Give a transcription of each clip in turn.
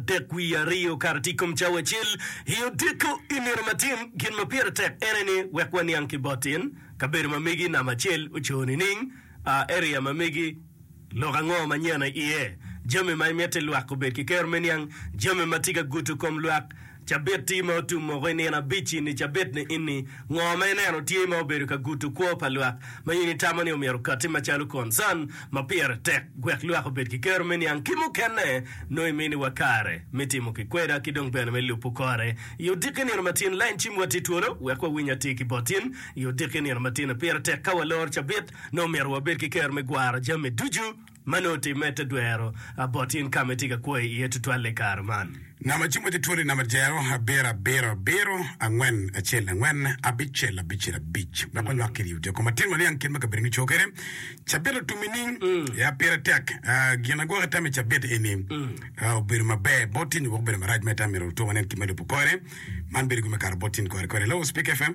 adek wiye aryo kara tye i kom cawa acel. I otyeko i nino matin, gin ma pire tek ene ni wek waniang ki botin kabedo ma megi namba acel oco nining, area ma megi lok ango ma nyena iye, jami ma imiti lwak obed ki kero me niang, jami ma tye ka guto kom lwak, cabitti ma otum moko i nino abic ini cabit ni ini, ngo ma ineno tye ma obedo ka guto kwo pa lwak ma in itamo ni omyero okatti macalo concern. ma pire tek wek lwak obed ki kero me niang ki mukene nongo iminiwa kare me timo ki kweda ki dong bene me lubo kore i odiki nino matin lain cim wa tye twolo wek wawiny atir ki bot in i odiki nino matino pire tek ka waloro cabit nongo myero wabed ki kero me gwaro jami ducu ma nongo timme te dwero bot in ka ma itye ka kwoyo iye tutwalle i kare man. Namba ci moc atwoli namba dyero abiro abiro abiro angwen acel angwen abicel abicel abic wek wanywak ki riyo tyeko matin waniang kit ma kabedo gico kwede cabit otum i ning ya pire tek gin agwoke tam i cabit eni obedo maber bot tin nyo wek obedo marac ma itam myero luto wanen kit ma lubo kore man bedo gin me kato bot tin kore kwede hello speak fm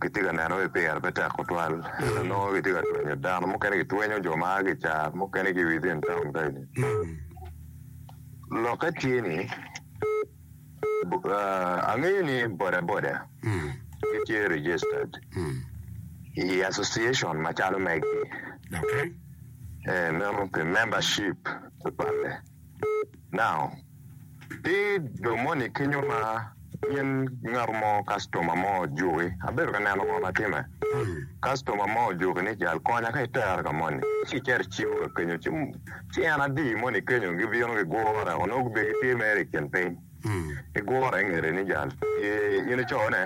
kitye ka neno ni pire pe tek tutwal. Nongo kitye ka twenyo dano, mukene gitwenyo jo ma a ki i car, mukene ki within taun kaeni. Lokke tye ni, angeyo ni bodaboda gitye registered i association macalo megi, ee, meno pi membership tutwalle. Now. Pi jo moni kenyo ma in ngat mo kactoma mo ojuki, abedo ka neno ngo ma timme. Kactoma mo ojuki ni jal konya ka itere ka moni, ci icito icibo ka kenyo ci ci en adi moni kenyo gibino gigure weko nongo gubed ki tye mere i kin piny gigure ingete ni jal tye in icone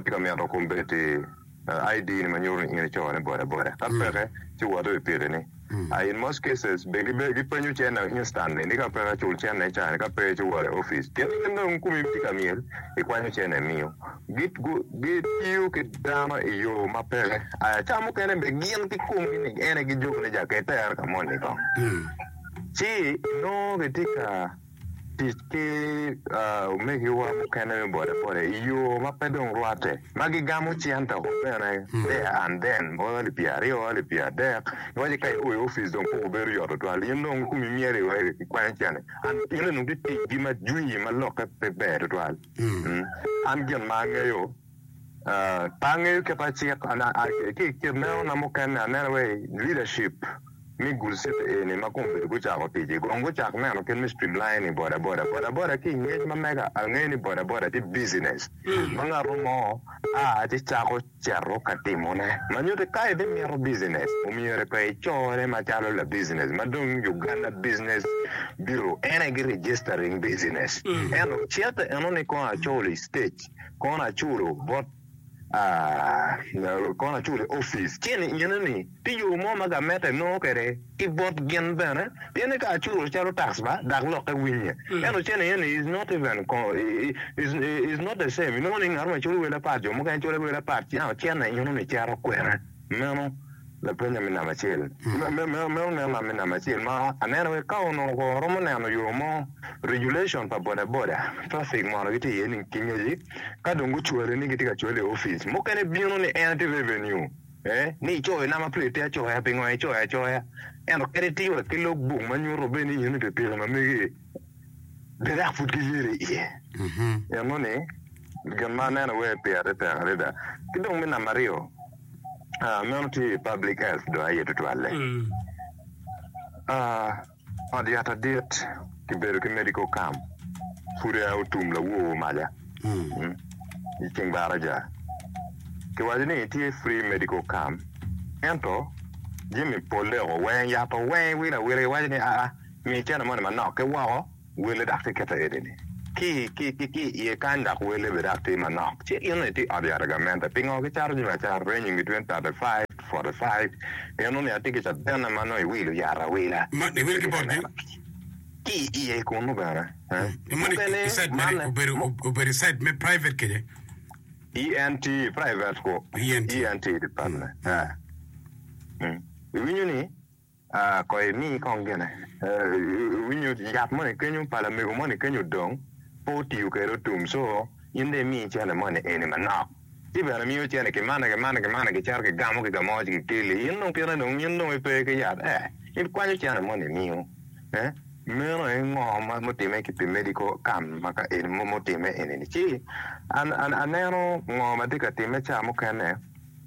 tye ka mito kombeddi. ID ni ma nyuto ni in ico ne boda boda ka peke ci wot i piki ni I in most cases be gi penyo cen na instantly ni ka peke cul cen na icano ka pe ci wot i office pien in dong kumi tye ka myel i kwanyo cen na imiyo gi tiyo ki dano i yo ma peke I aca mukene be gin ki kom gi ni ene gi juku ni jakette ero ka moni kong ci inongo ki tye ka tic ki omegiwa mukene me bodaboda i yo ma pe dong rwatte, ma gigamo cente oko bene there and then, bot alip pyer aryo, alip pyer adek, giwaco ka iko i opic dong koko bedo yot tutwal, in dong kumi myero iwe kikwanyo cente, and in onongo giticgi ma jwi ma lokke pe ber tutwal, and gin ma angeyo Pe angeyo kit ma cik ki i kit lenona mukene aneno wai leadership me Gul City eni ma kong obedo gucako tic-ci kong gucak neno kit me streamlining bodaboda. Bodaboda ki i ngec ma mega angeyo ni bodaboda tye business ma ngat mo a ci cako cito ka timone ma nyuti ka ibimito business omyero pe icore macalo la business ma dong Uganda Business Bureau en aye gi registering business ento cik enoni kong acol i state Kono aculo bot kono aculo i opic ci ni ine ni tye yo mo ma gameta enongo kwede ki bot gin bene pien ni ka aculo calo tax ba dak lokke winye ento ci ni ine ni is not even is not the same inongo ni ngat mo coyo wel apat jo mukene coyo wel apat ci an ocene ino ni cito kwena. Meno lapeny ami namba acel. Me oneno ami namba acel ma aneno aye ka onongo kong aromo neno yo mo regulation pa boda boda traffic mono gitye iye ni ki ngeci ka dong gucwale ni gitye ka cwale i office mukene bino ni en aye revenue eh ni icoyo namba plate te acoya pingo icoyo acoya ento kadi tiyo wa ki log book manyuto bene ni in i pikipiki ma megi. gidok pud giyedo i iye. Pien nonei gin ma aneno wai pire tek adada. Ki dong me namba aryo, ah, meno tye i public health dong aye tutwalle. Ah, ot yat adit kibedo ki medical camp pud aye otum lawoo maca, mm, i ceng baraca. Kiwaco ni tye free medical camp, ento jami polle oko weng, yat oweng, wilo awila, kiwaco ni aa, Mi iceno moni manok ki woko, wele dok ti kete edi-ni ki i iye kany, dok wele bene dok ti manok. Ci gin ni ti ot yat agamente. Pingo kicato jami acata ranging between thirty five to forty five? Mino ni atye ki cabene ma nongo iwilo yat awila ki camera ki i iye kunnu bene. Mukene manne. ENT private ku ENT department. Iwinyo ni? Kono imi kong gine. Iwinyo yat moni kenyo pa lamego moni kenyo dong pe otiyo kwede otum so in dong imi cene moni eni manok. Ci bene imiyo cene ki mane ki mane ki mane gicito gigamo ki kamo ci gikeli in dong kite dong in dong ipe ki yat eh in kwanyo cene moni imiyo eh meno aye ngo ma mutime ki pi medical cam ma ka eni mo mutime eni ni ci aneno ngo matye ka time ca mukene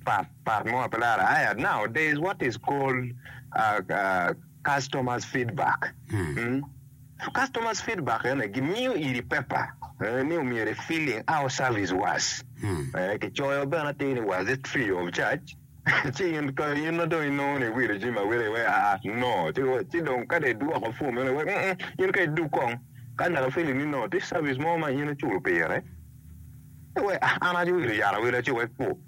pat. Part mo pe laro aya now there is what is called uh, uh, customers feedback mm. Customers feedback ene gimiyo iri paper eh, ni omyero i feeling our service was eh, kicoyo bene atir ni was it free of charge ci in ka in na dong inongo ni iwilo jami awila iwe aa no ci wa- ci dong ka dong idwoko form meno iwe "Mm, mm, in ka iduk kong ka naka feeling ni no tye service mo ma in iculo pire iwe "Ah, an aci iwilo yat awila ci wek pu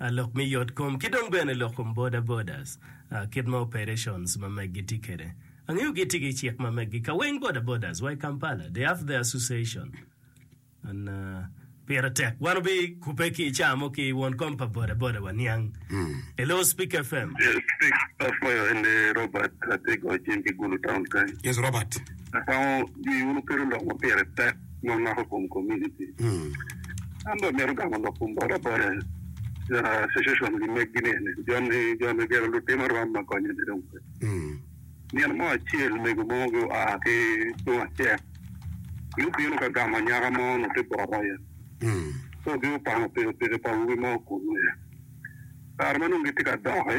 lok me yot kom ki dong bene lok kom boda bodas kit ma operations ma megi tye kede. Angeyo gi tye ki cik ma megi ka weng boda bodas wa i Kampala they have their association and pire tek wan obi kube ki ica mo ki won kom pa boda boda wa niang e lor Speak FM. Speak apwoyo en aye Robert atye i Gocin ki Gulu town kany. Yes Robert. Akwongo jwi wunu kit lok ma pire tek. ma mako kom komuniti. An bene amito gamo lok kom bota bota pien association gi meg gi nene joni joni gero lutino rwam ma konyo ne dong pe. Nino mo acel mego mo gi oa ki tung acek gi obino ka gamo anyaka mo onongo tye bot aye so gi opango pikipiki pa awobi mo okungu aye kare ma nongo gitye ka doki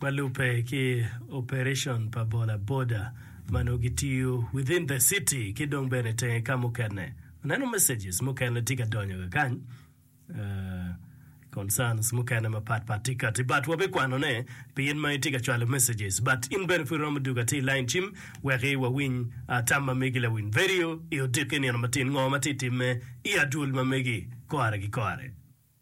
Ma lubbe ki operation pa bola boda ma nongo gitiyo within the city ki dong bene tenge ka mukene. Aneno messages mukene tye ka donyo kakany, uh, concerns mukene mapat pat tye kati but wabikwanone pi in ma itye ka cwalo messages but in bene pud iromo dugo ati i line cim weki wawiny uh, tam ma megi lawiny verio i odiki nino matin ngo ma tye timme i adwol ma megi kore ki kore.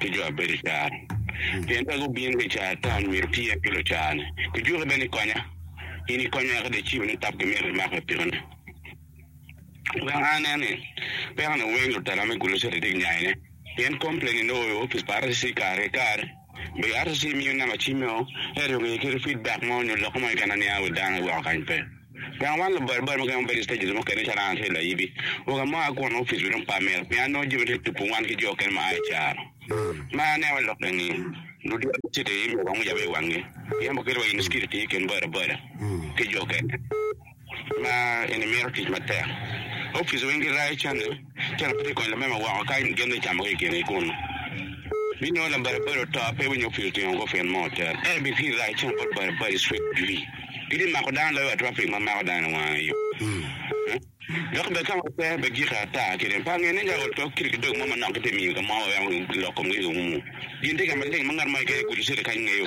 ki jo a bedo i caro, pien ka gubino ki i caro atona myero gityer ki lucarone. Gijuke bene ni konya, in ikonya eka dong icibo ni tap ki myero imak me pikone. Wek a nen ni pekone weng lutela me gulu catitik nyayone, pien komplain inongo i opic pa RCC kare ki kare. Be RCC miyo namba cim me o, ento inongo iye kit feedback mo nyo lok mo keken na niang i wi dano iweko kany pe. Gang man labolle bot mukene ma bedo i stages mukene calo an acel ayibi. Wek amok akwo ni opic bene opa myero pien nongo jami tye tupu wan ki jo okene ma aa i caro. Ma aneno wa lok eni, ludito ma cito i iye myero wangwec awic wangi pien waketo wa i mucukito tye i kin bodaboda ki jo okene ma eni mito tic matek. Opic weng girayo canne. Iceno pe kikwanyo lamema woko ka gin dong icamo ki i kingi kun binongo labaribari oto, pe winyo opye otingo go pien mo oter. Ento i bikiri dok iceno bot baribari cwit dwi, gitye mako dano loyo wa traffic ma mako dano i wange yo. Dok bene ka ma oter bene giki ata ki rem pe ange ni ka oto kit ki dog mo manok gitye miyo ka mo waweko gilok komgi ki umu gin tye ka maleng ma ngat mo keken i gudo cito kany ngeyo.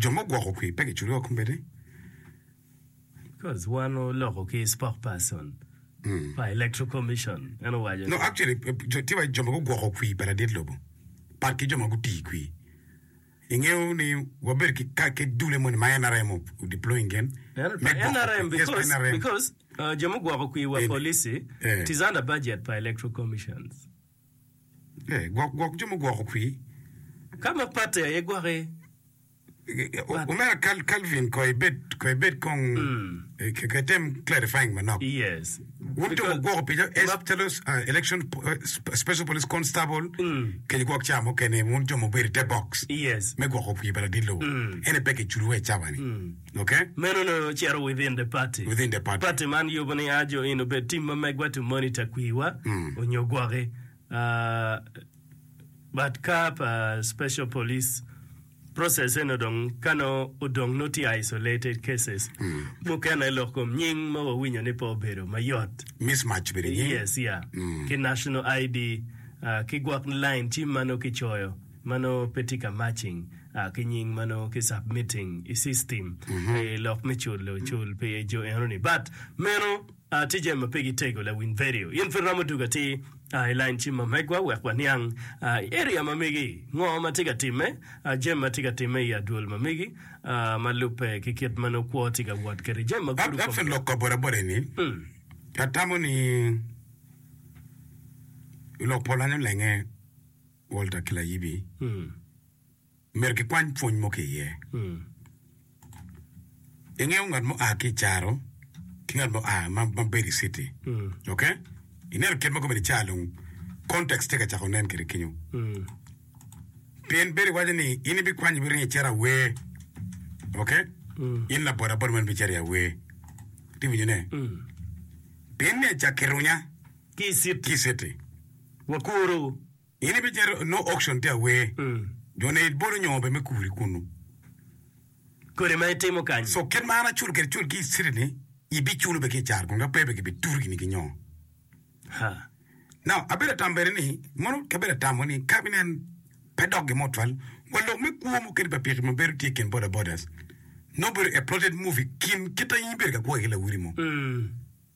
Jo ma ogwoko kwi pe giculo wa kombeddi? No, actually, tye wa ki jo ma gugwoko kwi pa ladit lobo, pat ki jo ma gutii kwi. Ingeyo ni wabedo ki ka ki dulle moni ma NRM o deploying gin me gwoko kwi. Yes, NRM. Ee, gwok gwok jo mugwoko kwi. Ka ma patte aye gwokke. Omera Cal, Calvin ko ibed ko ibed kong eh, ke- ke tem clarifying manok. Yes. Wun jo Because- mugwoko pijo es Map- calo ah, election po- eh, sp- special police constable kec gwok ca mukene wun jo mubedo i te box Yes. me gwoko kwi pa ladilo. Ene pe kiculu wa i cawa ni. Meno onongo ocito within the party. Party man yubo ni a jo eni obed tim ma megwa to monitor kwiwa onyo gwoki but ka pa special police process eno dong ka nongo odong nongo tye isolated cases mukene lok kom nying ma wawinyo ni pe obedo mayot Mismatch bene nying. yes yeah ki national ID ki gwok line tim ma nongo kicoyo ma nongo pe tye ka matching ki nying ma nongo ki submitting i system pi lok me culo cul pi jo eno ni but meno tye jami ma pe gi tego lawiny vedio in pud romo dug atir i line cim ma megwa wek wa niang i area ma megi ngo ma tye ka time jami ma tye ka time i adwol ma megi ma lube ki kit ma nongo kwo tye ka wot kede jami ma gudo kome. Lok ka boda boda eni atamo ni lok pol anyo lenge. Walter ki layibi omyero gikwany pwony mo ki iye. Ingeyo ngat ma oa ki i caro ki ngat ma oa ma ma bedo i citi. Ok? Ineno kit ma gubedo i caro dong context tye ka cako nen kwede kenyo. Pien bedo iwaco ni in ibikwanyo ibiringo icito awer. Ok? In labodaboda meno ibicito i awer. Iti winyo ne? Pien ni acakke runya Ki i citi. ki i citi. Wakuru, in ibicito i no auction te awer, jo ne ibolo nyongo be me kuri kunu. Kodi ma itimo kany. So kit ma an aculo kede cul ki i city ni ibiculo be ki i car kunu ka pe be ki bi turu gini ki nyongo. Ha. Now abedo atamo bene ni mono kabedo atamo ni ka binen pe dok gin mo twal wa lok me kwo mukene pa piki ma bedo tye i kin boda bodas nongo bedo a plotted movie kin kit a in ibedo ka kwoke ki lawoti mo. Mm.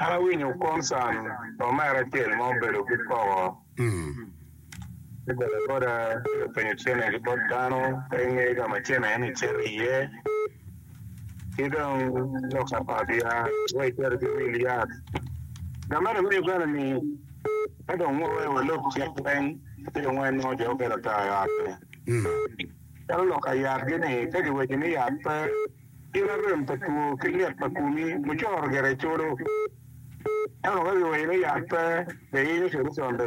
An awinyo Conson pa omera acel ma obedo ki koko ki bolo boda ci openyo cene ki bot dano pe ingeyo ka ma cene ni cito iye ki dong lok ka pa biya wai cito ki wil yat ka meno me Uganda ni ka dong nongo wai wa lok cik pweny ci dong wai nongo jo mukene oto i ot ni calo lok ka yat gi ni ka ki weco ni yat pe Gin ma rem pa two ki lit pa komi mucoro gire codo, ento ka giweyo ni yat pe, be iyenyo codo conde.